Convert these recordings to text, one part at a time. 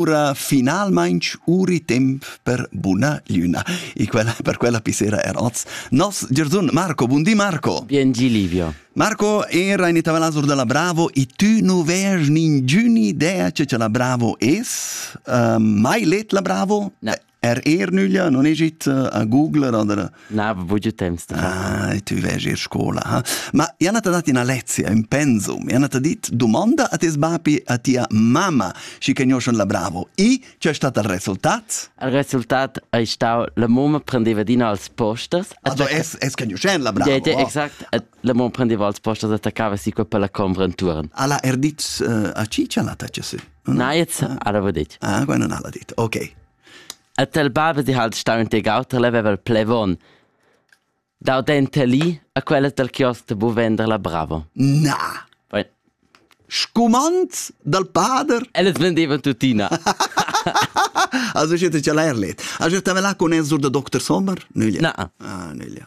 ora finalmain uri temp per buna luna. E quella, per quella pisera er oz nos Giorsun Marco. Buondì Marco. Biengi Livio. Marco era in Itavelasur della Bravo e tu non vês ningiuni idea che la Bravo es? Uh, mai let la Bravo? No. Er er nüglia non egit eh, a googler oder Na, voglio temps. Ah, tu vegi ir scola, ha? Ma Jana t'ha dat ina lezia, un pensum. Jana t'ha dit domanda a tes bapi a tia mamma, si che gnoscion la bravo. I c'è stato il resultat? Il resultat è stato la mamma prendeva dina als postas. Also es es che gnoscion la bravo. Ja, ja, exakt. La mamma prendeva als postas e attaccava si per la compra in turn. Alla er dit eh, a cicia la tace se? Naiz arava dit. Ah, quella non ha dit. Ok. Et el baba di halt stau in tegauter leveva il plevon. Dau dente lì a quella del chios de bu vender la bravo. Na! Poi, Scumand dal pader? Elles vendevan tuttina. Also, ich hätte ja leerlet. Also, ich habe là con el sur der Dr. Sommer? Nüglia. Na. Ah, nüglia.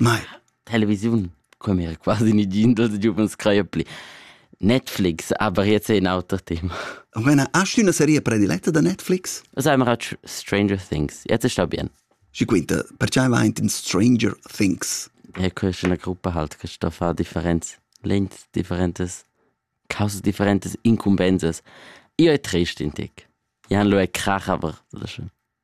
Mai. Televisiun come era quasi nigin dels giuvens craia pli. Netflix avriez è in auter tema. O mena, hast du una serie prediletta da Netflix? Also, I'm watch Stranger Things. Jetzt sta bien. Și quinta, perché vai in Stranger Things? Ja, ist in einer Gruppe halt, kannst da far differenz, length differentes, causas differentes, incumbenses. Io è trist in tic. Jan lo è krach, aber das ist schön.